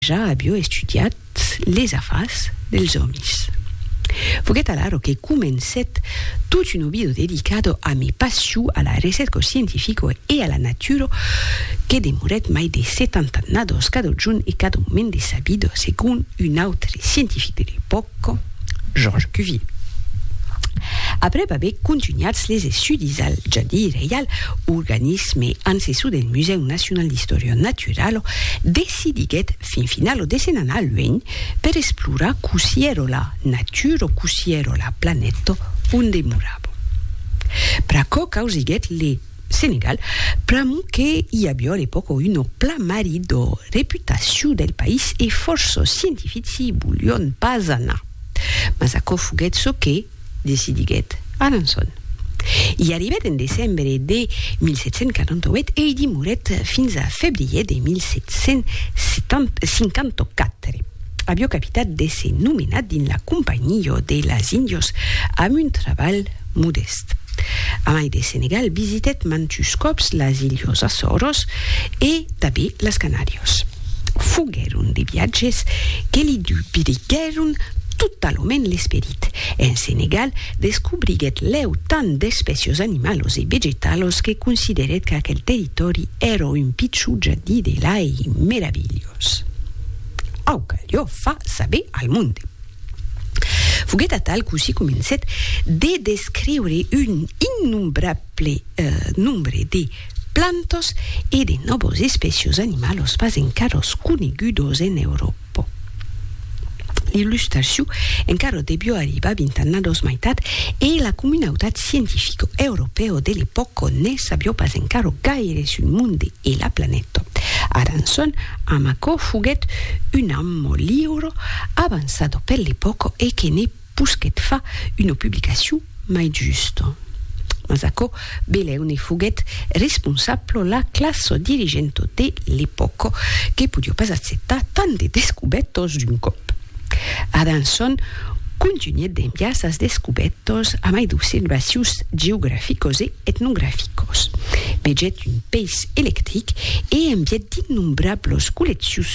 Ja avió estudiat les afars dels òmis. Foguèt alaro que comencèt tot un obido dedicado a mi passió a la recèrca scientifico e a la natura que demorèt mai de setanta annados cada jorn e cada moment de sa vida, segon un autre scientific de l'epòca, Georges Cuvier. Aprèp aver contunhats les estudis al Jardí Reial, organisme ancessor del Musèu Nacional d'Istòria Naturala, si diguèt fin final o dessen anar luènh per esplorar cossí ero la natur o cossí ero la planèto on demorabo. Pr'aquò causiguèt le Senegal, pr'amor que i avió a l'epòca un o plan marit d'o reputaciu del país e fòrça scientifici i volión pas anar. Mas aquò foguèt çò que. decidiguèt Alençon. I arribèt en decembre de 1748 e i dimorèt fins a febrier de 1754, avió capitat d'èsser nomenat dins la Companhió de las Índios amb un trabalh modèst. A mai de Senegal, visitèt mantus còps las Ilhos Açòros e tanben las Canàrios. Foguèron de viatges que li dubriguèron totalament l'esperit. En Senegal, descobriguèt lèu tant d'espècios animalos e vegetalos que considerèt qu'aquel territòri èra un pichon jardí de l'ai meravilhós. Au calió far saber al monde. Foguèt atal cossí comencèt de descriure un innombrable nombre de plantas e de nòvos espècios animalos pas encaras conegudos en Euròpa. po. Illustraciu encara debió arribar vint annados mai tard e la comunautat scientifico europeo de l'epòca ne sabió pas encara gaire sul monde e la planeta. Aranson, amb aquò, foguèt un ammo liuro avançado per l'epòca e que ne Pusquet fa una publicacion mai justa. Mas aquò beleu ne foguèt responsablo la classa dirigenta de l'epòca, que podiá pas acceptar tant de descubètas d'un còp. Adanson contunhèt d'enviar sas descubètas a mai d'observacions geograficas e etnograficas. Vegèt un peis electric e envièt d'innombrablas colleccions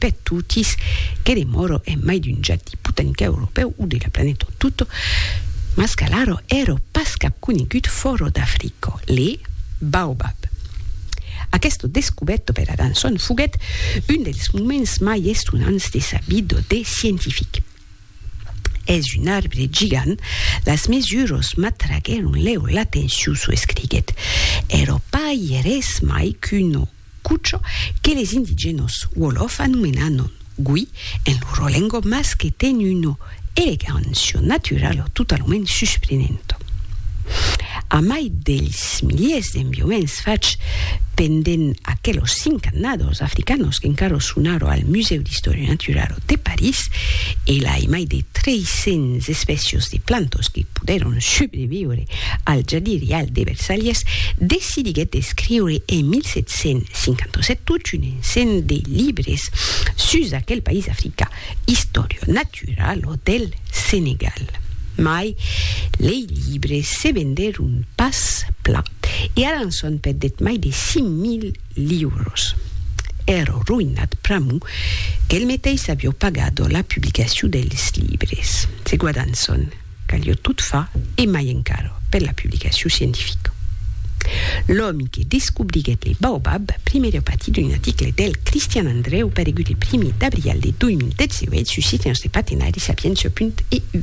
per totis, que demòro en mai d'un jati potanca europèu o de la planeta en tot, mas qu'alara èra pas cap conegut fòra d'Africa, le baobab. Aquesta descobèrta per Adanson foguèt un dels moments mai estonants de sa vida de scientific. Es un arbre gigant, las mesuras m'atraguèron lèu l'atencion, çò escriguèt. Èra pas ièr res mai qu'una Cucho, que les indigènos wolof anomenanon gui en loro lengua mas que ten una elegancia naturala totalament susprenenta. Amai dels miliers d'enviaments fachs pendent aquelos cinc annadors africanos qu'encara son ara al Musèu d'Istòria Naturala de París, e lai mai de 300 espècias de plantas que podèron subreviure al jadirial de Versalhes, Martí diguèt d'escriure en 1757 tot un ensenh de libres sus aquel país africà, Historia Natural o del Senegal. Mai, lei libres se vendèron pas plan e Alanson perdèt mai de 5.000 liuros. Èrò roïnat pr'amor qu'el meteis avió pagat la publicacion dels libres. Se guadanson. Calió tot far, e mai encara, per la publicacion scientifica. L'òmi que descobriguèt le baobab primièr a patir d'un article del Cristian Andrèu paregut el primièr d'abrial de 2018 sus Sitiens de Patenari, Sapientia. EU.